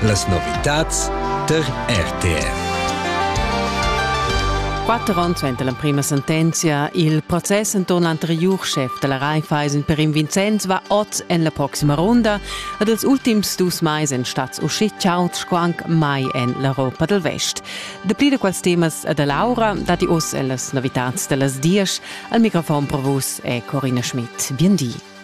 Las novitads tar RTR. Quatter onns suenter l'emprima sentenzia, il process enturn l'anteriur schef della Raiffeisen per in Vincenz va oz en la proxima runda ed els ultims dus mais en stats uscitschauts sco anc mai en l'Europa del Vest. Dapli da quels temas e da Laura datti oz en las novitads da las dies. Al microfon per vus è Corina Schmidt. Bien di.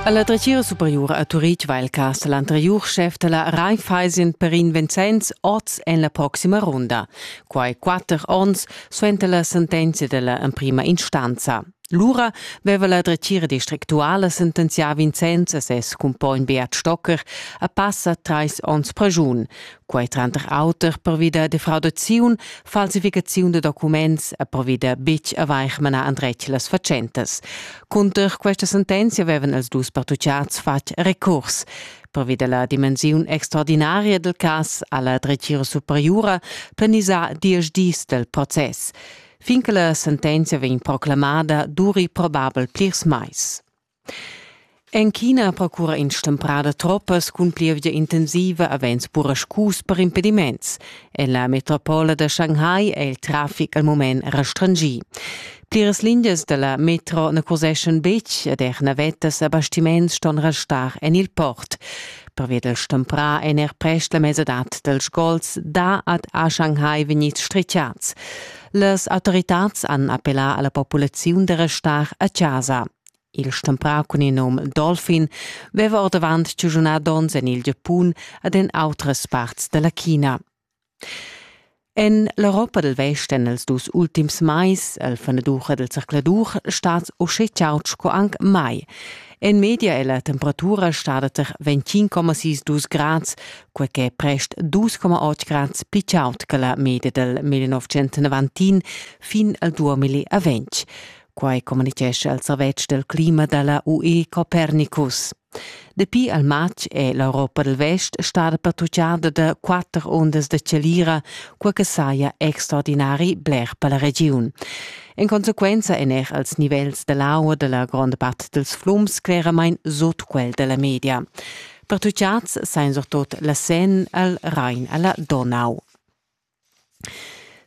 Alla dretgira superiura a Turitg va il cas l'anteriur chef della Raiffeisen per in Vincenz oz en la proxima runda. Quai quatter onns suenter la sentenza della emprima instanza. Lura veva la dretgira districtuala sentenzià Vincenz a ses cumpogn Beat Stocker a passa trais onns pregiun. Quai tranter auter pervi da defraudaziun, falsificaziun da documents e pervi da betg avair manà endretg las fatschentas. Cunter questa sentenzia avevan els dus partutgiads fatg recurs. Pervi da la dimensiun extraordinaria del cas ha la dretgira superiura planisà diesch dis del process. Fin che la sentenzia vegn proclamada duri probabel plirs mais. En China procura in stemprada troppas cun plievgia intensiva avens buraschus per impediments. En la metropola da Shanghai è il traffic al mument restringì. Pliras lingias da la metro na curseschan betg ed er navettas a bastiments ston restar en il port. Pervia del stemprà èn er prest la mesadad dals gols da ad a Shanghai vegnids stritgiads. Las autoritads han appellà a la populaziun da restar a chasa. Il stemprau cun il num Dolphin veva ordavant giugiunà donns en il Giapun ed en outras parts dalla China. En l'Europa del Westen els dus ultims mais, el fenadur del zercladur, stat uschè chaud sco anc mai. En media è la temperatura stada tar 25,6 grads, quai che è prest 2,8 grads pli chaud che la media del 1990 fin al 2020. Quai communitgescha il servetsch del clima dalla UE Copernicus. Dapi al matg è l'Europa del Vest stada pattugliada da quatter ondas da celira, quai che saja extraordinari bler per la regiun. In conseguenza èn er als nivels dell'aua della gronda part dels flums cleramain sut quel della media. Pertucciats sain surtot la Seine al Rhein alla Donau.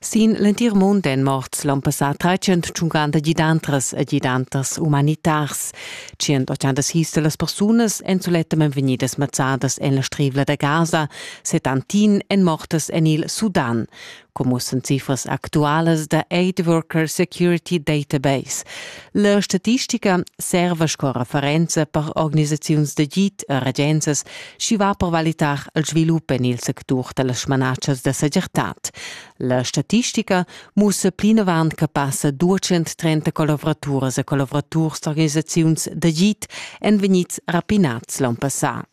Sin l'entir mund èn morts l'onn passà 350 gidantras e gidanters umanitars. 180 sis da las persunas èn sulettamain vegnidas mazzadas en la Strivla da Gaza, 71 èn mortas en il Sudan, come mussan cifras actualas da Aid Worker Security Database. La statistica serva sco referenza per organisaziuns d'agid e regenzas schi va per valitar il svilup en il sectur da las smanatschas da segirtad. La statistica mussa plinavant che passa 230 collavuraturas e collavuraturs d'organisaziuns d'agid èn vegnids rapinats l'on passà.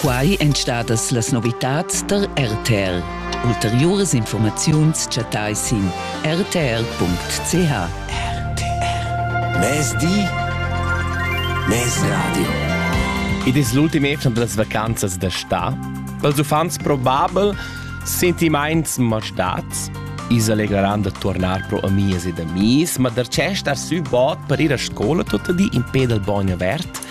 Quai èn stadas las novitads da RTL. Ulteriuras informaziuns chattai sin rtr.ch. RTR. Mezdi. Mezradio. Id es l'ultim etern da las vacanzas da sta. Pels uffants probabel sentimaints ma stats. Is allegreran da tornar pro amias ed amis, ma der cest ar sü bod per ir a scola tot di in pe dal bagno avert